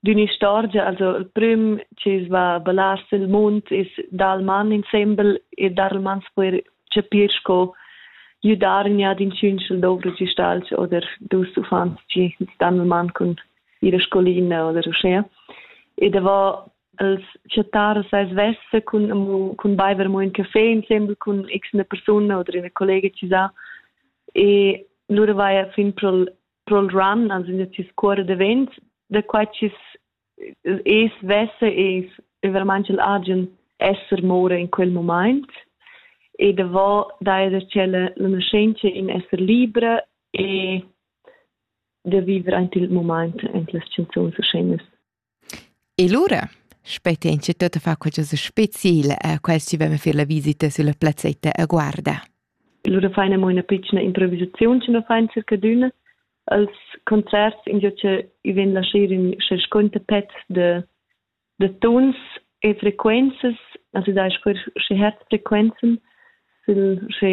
D'ün'istorgia, also il prüm chi's va a ballar sül munt es dal man insembel e dar il man spuer chapir sco gliudargna ad inchün sch'el dovra gistalgia oder dus uffants chi stan il man cun ira scolina oder uschea. E davo els chattar sai svessa cun amo cun baiver amo ün café insembel cun x üna persuna oder üna collega chi sa e lura vaja fin pro'l Roll Run ans ün discuorrer davent da quai chi's es, vessa es veramaing il agen esser moura in quel mumaint e davo daja da tschella la naschentscha in esser libra e da viver aint il mumaint aint las chanzuns e sceinas. E lura spetg'ins tut da far qualchosa special a quels chi vevan fer la visita sülla plazzetta a Guarda. Lura fain amo üna pitschna improvisaziun chi nu fain circadüna. Als concerts ingio cha i vegn laschè ün sconta pezs de de tuns e frequenzas, also da sper sche herzfrequenzen, sil sche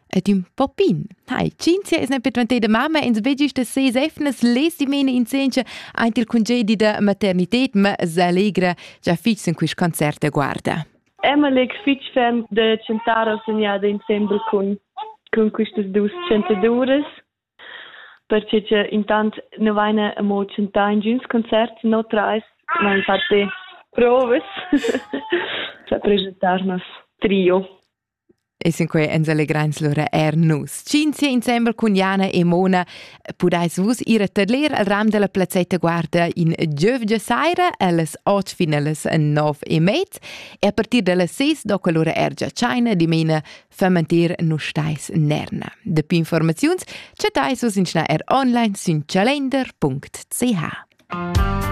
Ed ün popin. Hai, cinzia es ne per dvanteda mamma, ins vegis da ses efnas lesi mene in sencha aint il congedi da maternited, ma s'allegra già fich in quist concert da guarda. Emeleg fich ferm da chantar al segnada insembel cun, cun quistas dus chantaduras perché che intant nu vaina amo chantà in giuns concerts no trais, ma infatti provas da presentarnos trio. E sinquei ens allegreins lura er nus. Cinzia insembel cun Jana e Mona pudais vus ir a tadler al ram della plazzetta guarda in giövgia saira allas otg finales nov e mez e a partir dallas ses doca lura er già China dimena fermentir nus stais nerna. De più informaziuns chattais vus in schna er online sün calender.ch.